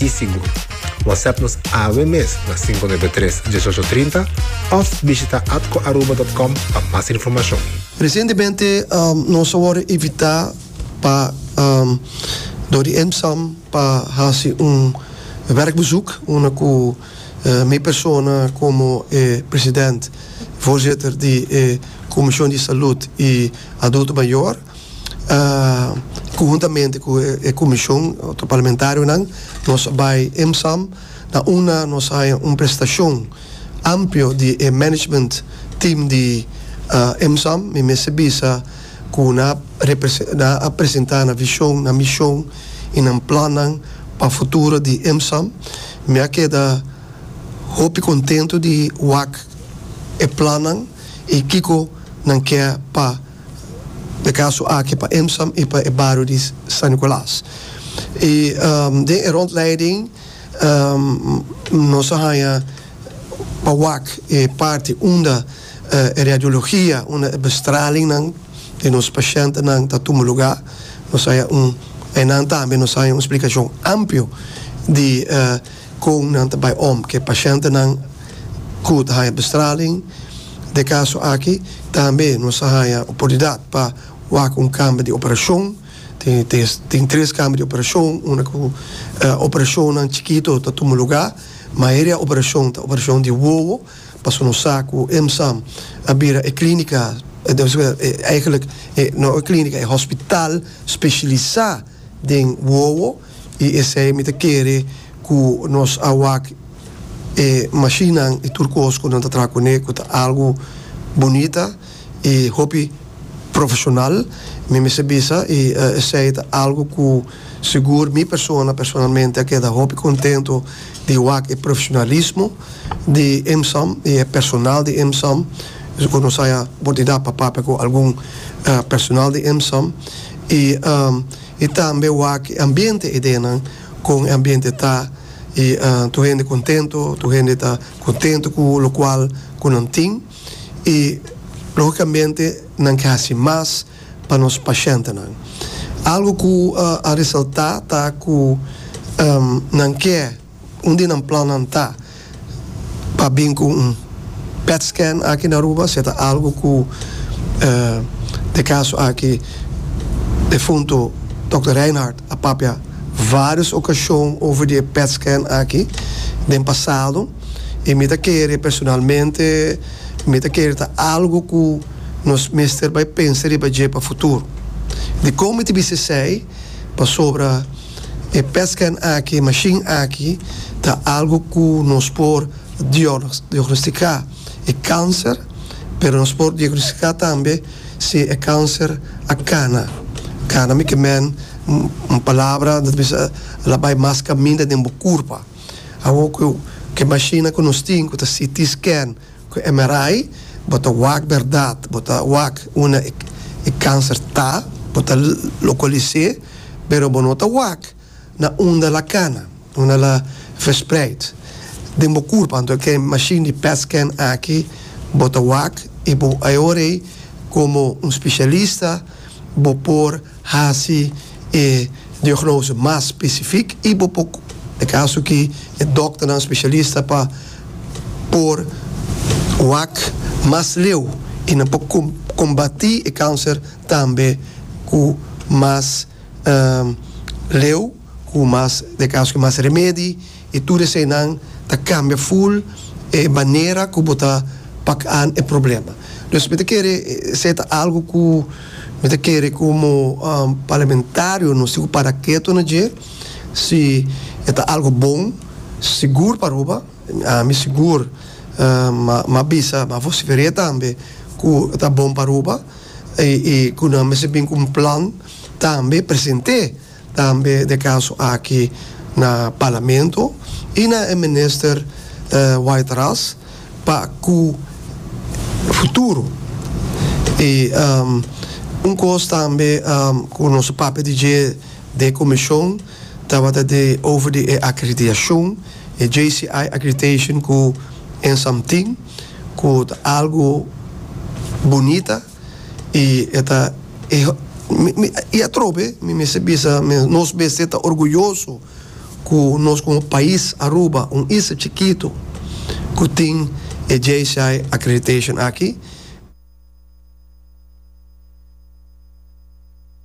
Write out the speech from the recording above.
i sigur. Whatsapp nos awe mes na cinco nuebe tres, dieshocho trinta of bishita atcoaruba.com pa mas informacion. Recientemente nos a worde invita pa dor di EMSAM pa haci un werkbezoek unda cu mi persona como e president, voorzitter, di e Comision di Salud y Adulto Mayor, Conjuntamente cu e comision, otro parlamentarionan, nos bay EMSAM. Na una nos haya un presentacion amplio di e management team di EMSAM. Mi mester bisa cu nan a nan a presenta nan vision, nan mision y nan plannan pa futuro di EMSAM. Mi a keda hopi contento di wak e plannan y kico nan kier pa. e kaso aki pa Emsam i pa e bario di San Nicolas. I den e rondleiding nos a haña pa wak e parti unda e radiologia, unda e bestralingnan di nos pashentenan ta tuma lugá. Nos a haña un, einan tambe nos a haña un splikashon amplio di. Kon nan ta bai om ku e pashentenan ku ta haña bestraling? Den e kaso aki tambe nos a haña oportunidat pa wak un kambio di operashon. Tin tres kambio di operashon unda ku operashonnan chikito ta tuma lugá. Mayoria operashon ta operashon di wowo pasobra nos sa ku EMSAM a bira e klínika, no e klínika, e hospital speshilisá den wowo. I esei mi ta kere ku nos a wak e mashinnan i tur kos ku nan ta traha kuné ku ta algu bunita i hopi profeshonal. Mi mester bisa i esei ta algu ku sigur mi persona personalmente a keda hopi kontentu di wak e profeshonalismo di EMSAM i e personal di EMSAM. Sigur nos haya oportunidad pa papia ku algun personal di EMSAM i. I tambe wak e ambiente e denan kon e ambiente ta i tur hende kontento tur hende ta kontento ku lokual ku nan tin i logikamente nan ke hasi mas pa nos pashentenan algu ku a resalta ta ku nan ke. Un di nan plannan ta pa bin ku un pet scan aki na Aruba, si e ta algu ku e kaso aki defuntu Dòkter Rijnhardt a papia vários okashon over di e pet scan aki den pasado. I mi ta kere personalmente, mi ta kere ta algu ku nos mester bai pensa riba dje pa futuro. Dikon mi ta bis'esei? Pasobra. E pescan aki, e mashin aki ta algo cu nos por diagnostica e cancer, pero nos por diagnostica tambe si e cancer a cana. Cana mica men un palabra ta bisa la bay mas caminda den bo curpa. Awo cu e mashinnan cu nos tin cu ta CT scan, Cu e merai bo ta wak berdad, bo ta wak una e cancer ta, bo ta localisé, pero bo no ta wak na unda la cana, unda la verspreid den bo curpa. Anto cu e machine di pet scan aki bo ta wak y bo ayorei como un specialista bo por. Hasi e diagnose mas specific y bo por e caso ki e dokternan specialista pa por wak mas leu y nan por combati e cancer tambe cu mas leu. Cu mas de cas cu mas remedi y tur eseynan ta cambia full e manera cu bo ta pak aan e problema. Dus mi ta kere esey ta algo cu mi ta kere como parlamentarionan si cu para keto na dje, si e ta algo bon, sigur pa Aruba, ami sigur m'a bisa, m'a vocifer'e tambe cu ta bon pa Aruba y cu nan mester bin cu un plan tambe present'e. tambe na e kaso aki na Parlamento i na e Minister White Ras pa ku futuro i un kos tambe ku nos a papia di dje den e komishon tabata di over di e akreditashon e JCI accreditation ku ensamtin ku ta algu bunita. y e ta y atrobe mi mester bisa men nos mester ta orguyoso cu nos como pais Aruba un isla chikito cu tin e JCI accreditation aki.